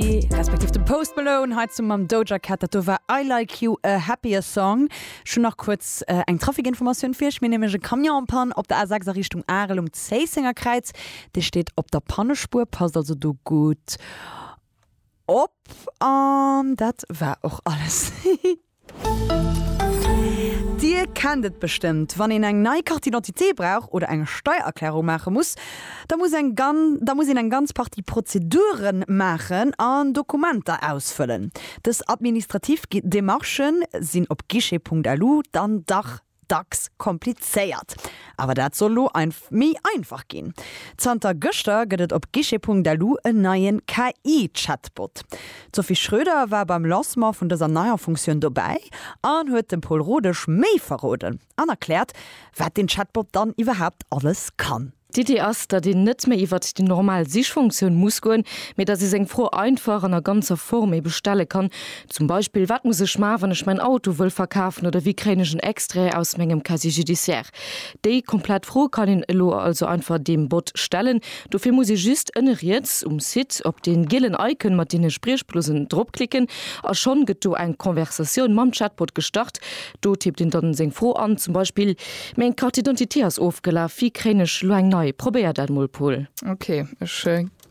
Ghostly, respektiv dem Post Malone hei zum mam Doja Cat. Dat do war I Like You, a happier song. Ech hunn nach kuerz eng Trafikinformatioun fir iech. Mir hu nämlech e Camion en Panne op der A6 a Richtung Arel um Zéissenger Kräiz. Dee steet op der Pannespuer, passt also do gutt op. An dat war och alles. Dir kennt et bestëmmt, wann een eng nei Carte d'identité brauch oder eng Steiererklärung maache muss, da muss eng da muss een eng ganz Partie Prozedure maachen an Dokumenter ausfëllen. Dës administrativ Demarchë sinn op guichet.lu dann dach Dacks komplizéiert, awer dat soll lo méi einfach ginn. Zanter gëschter gëtt et op guichet.lu en neie KI-Chatbot. D'Sophie Schröder war beim Lancement vun dëser neier Funktioun dobäi an huet dem Pol Rodesch méi verroden an erkläert, wat den Chatbot dann iwwerhaapt alles kann. D'Iddi ass, datt een net méi iwwert déi normal Sichfunktioun muss goen, mee datt ee seng Fro einfach an a ganzer Form ebe stelle kann, zum Beispill, Wat muss ech maachen, wann ech mäin Auto wëll verkafen? oder Wéi kréien ech en Extrait aus mengem Casier judiciaire? Déi komplett Fro kann een elo also einfach deem Bot stellen. Dofir muss ee just ënne riets um Site op dee gielen Icon mat deene Spriechblosen dropklicken a schonn gëtt do eng Conversatioun mam Chatbot gestart. Do tippt een dann seng Fro an, zum Beispill, Meng Carte d'identité ass ofgelaf, wéi kréien ech elo eng nei? Probéier dat mol, Paul. Ok, ech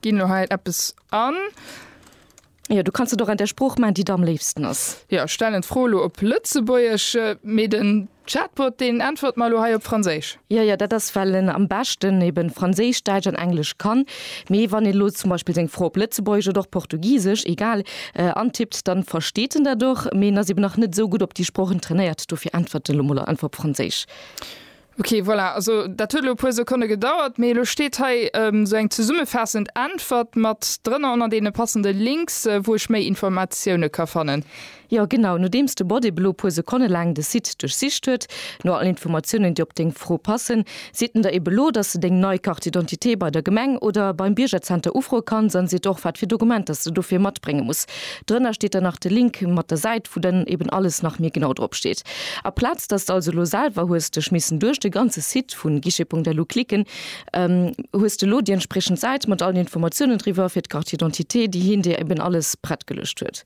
ginn elo hei eppes an. Jo, du kanns et och an der Sprooch maachen, déi der am léifsten ass. Jo, ech stellen d'Fro elo op Lëtzebuergesch, mee den Chatbot, deen äntwert mer elo hei op Franséisch. Jo, jo, dat ass, well en am beschten eben Franséisch, Däitsch an Englesch kann. Mee wann een elo zum Beispill seng Fro op Lëtzebuergesch oder och Portugisesch, egal, antippt, da versteet en dat och, mee en ass eben nach net esou gutt op déi Sproochen trainéiert. Dofir äntwert elo mol einfach op Franséisch. Ok, voilà, also dat huet elo e puer Sekonne gedauert, mee elo steet hei esou eng zesummefaassend Äntwert mat drënner ënner deene passende Links, wou ech méi Informatioune ka fannen. Jo genau, nodeems de Bot eben lo puer Sekonne laang de Site duerchsicht huet no all Informatiounen déi op deng Fro passen, seet en der eben lo dass de deng nei Carte d'identité bei der Gemeng oder beim Biergerzenter ufroe kanns an seet och wat fir Dokumenter s de dofir matbrénge muss. Drënner steet dann nach de Link mat der Säit wou dann eben alles nach méi genau drop steet. A Plaz dass de also lo selwer hues dech missen duerch de ganze Site vu Guichet.lu klicken, hues de lo déi entspriechend Säit mat allen Informatiounen driwwer fir d'Carte d'identité déi hien dir eben alles prett geluecht huet.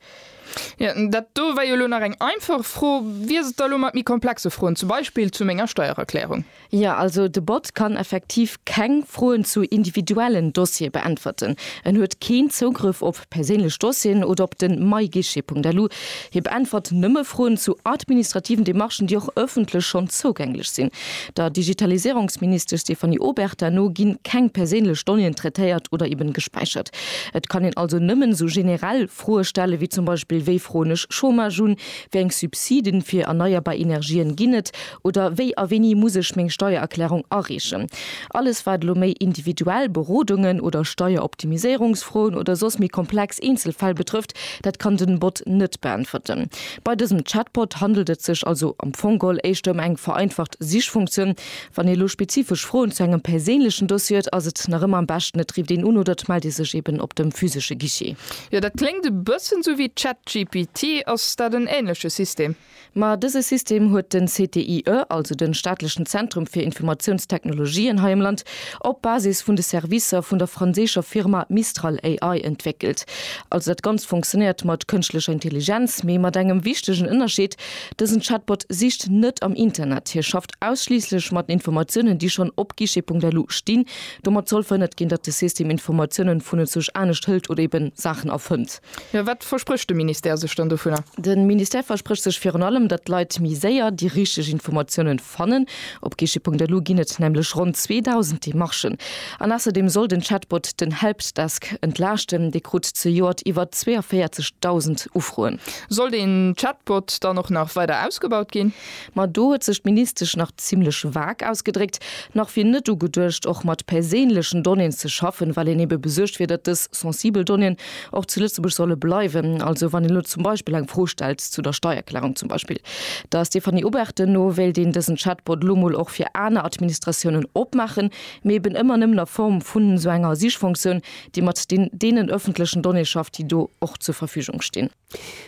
Jo, dat do war jo elo nach eng einfach Fro. Wéi ass et da elo mat méi komplexe Froen, zum Beispill zu menger Steiererklärung? Jo, also de Bot kann effektiv keng Froen zu individuellen Dossiere beäntwerten. En huet keen Zougrëff op perséinlech Dossieren oder op den myguichet.lu. Hie beäntwert nëmme Froen zu administrativen Demarchen, déi och ëffentlech schonn zougänglech sinn. Der Digitaliséierungsministesch Stéphanie Obertin no ginn keng perséinlech Donnéeën traitéiert oder eben gespäichert. Et kann een also nëmmen esou generell Froe stellen, wéi zum Beispill, Wéi froen ech Chômage un? Wéi eng Subsiden fir erneierbar Energien ginn et? Oder wéi a wéini muss ech meng Steiererklärung areechen? Alles wat elo méi individuell Berodungen oder Steieroptimiséierungsfroen oder soss méi komplex Eenzelfäll betrëfft, dat kann den Bot net beäntwerten. Bei dësem Chatbot handelt et sech also am Fong geholl éischter ëm eng vereinfacht Sichfunktioun, Wann ee lo spezifesch Froen zu engem perséinlechen Dossier huet, ass et nach ëmmer am beschten, et rifft een un oder et mellt ee sech eben op dem physesche Guichet. Jo, dat kléngt e bëssen sou wéi ChatGPT. Ass dat en ähnleche System? Ma dëse System huet den CTIE, also den staatlechen Zentrum fir Informatiounstechnologien hei am Land, op Basis vun de Servicer vun der franséischer Firma Mistral AI entwéckelt. Also dat Ganzt fonctionnéiert mat kënschtlecher Intelligenz, mee mat engem wichtegen Ënnerscheed, dësen Chatbot sicht net am Internet, hie schafft ausschliisslech mat Informatiounen, déi schonn op guichet.lu stinn. Domat soll verhënnert ginn, datt de System Informatiounen vunenzouch anescht hëlt oder ebe Saachen erfënnt. Mä wat versprécht de Ministère sech dann dovunner? De Ministère versprécht sech virun allem, datt d'Leit méi séier déi richteg Informatiounen fannen. Op guichet.lu ginn et nämlech ronn 2.000 Demarchen. An ausserdeem soll den Chatbot den Helpdesk entlaaschten. Dee krut zejoert iwwer 42.000 Ufroen. Soll den Chatbot dann och nach weider ausgebaut ginn? Ma do huet sech d'Ministesch nach zimlech vag ausgedréckt, Nach wier net ugeduecht, och mat perséinlechen Donnéeën ze schaffen, well een ebe besuergt wier, datt dës sensibel Donnéeën och zu Lëtzebuerg solle bleiwen. Also wann een elo zum Beispill eng Fro stellt zu der Steierklärung zum Beispill, der Stéphanie Obertin no, wéilt een dësen Chatbot elo mol och fir aner Administratiounen opmaachen, mee eben ëmmer nëmmen a Form vun esou enger Sichfonctioun, déi mat deenen ëffentlechen Donnéeë schafft, déi do och zur Verfügung stinn.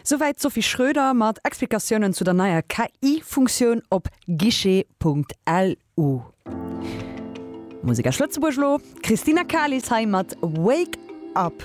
Souwäit d'Sophie Schröder mat Explikatiounen zu der neier KI-Funktioun op guichet.lu. Musek aus Lëtzebuerg elo, d'Christina Kalis hei mat Wake Up.